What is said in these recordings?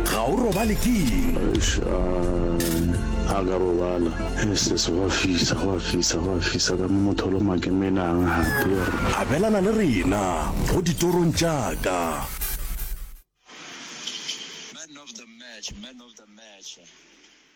ga o robale keng a ka robala eses gwa fisa gwa fisa gwa fisa ka mo motholo makemelang gape abelana le rena go ditorong tšaka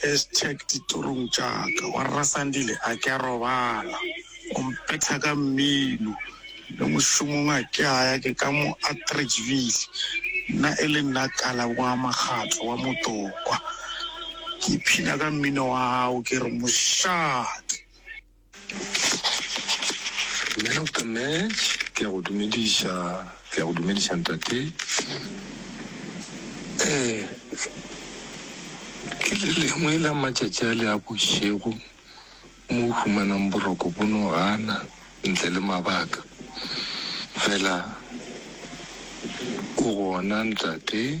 Hashtag ditorong tša ka wa rra Sandile a ke a robala o mpetha ka mmino le mošomong a ke a ya ke ka mo Atteridgeville nna e le nna Kala wa Makgatlo wa Motokwa ke iphina ka mmino wa gago ke re mošate. Man of the match, ke a go dumediša, ke a go dumediša ntate. Ee, ke le lengwe la matšatši a le a bošego mo o humanang boroko bo no gana ntle le mabaka. Fela o gona ntate.